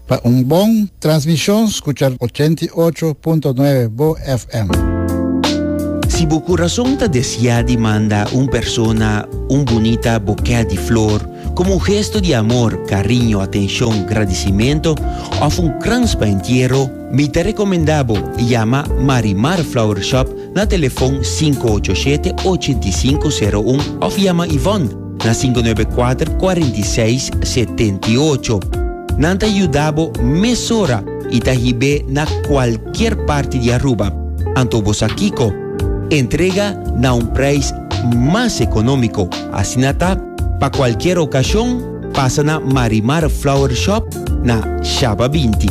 Pa un bon transmishon skucha ochenta i ocho punto nuebe bo FM. Si bo kurason ta desiá di manda un persona un bunita bokè di flor komo un gesto di amor, kariño, atenshon, gradisimentu òf un krans pa entiero, mi ta rekomendá bo yama Marimar Flower Shop na telefòn sinku ocho shete, ochenta i sinku, seru un òf yama Yvonne, na sinku nuebe kuater kuarenta i seis setenta i ocho. Nan ta yuda bo mesora i ta hib'é na kualkier parti di Aruba. Anto bo sa kiko? Entrega na un preis mas ekonómiko. Asina ta, pa kualkier okashon, pasa na Marimar Flower Shop na Shaba binti.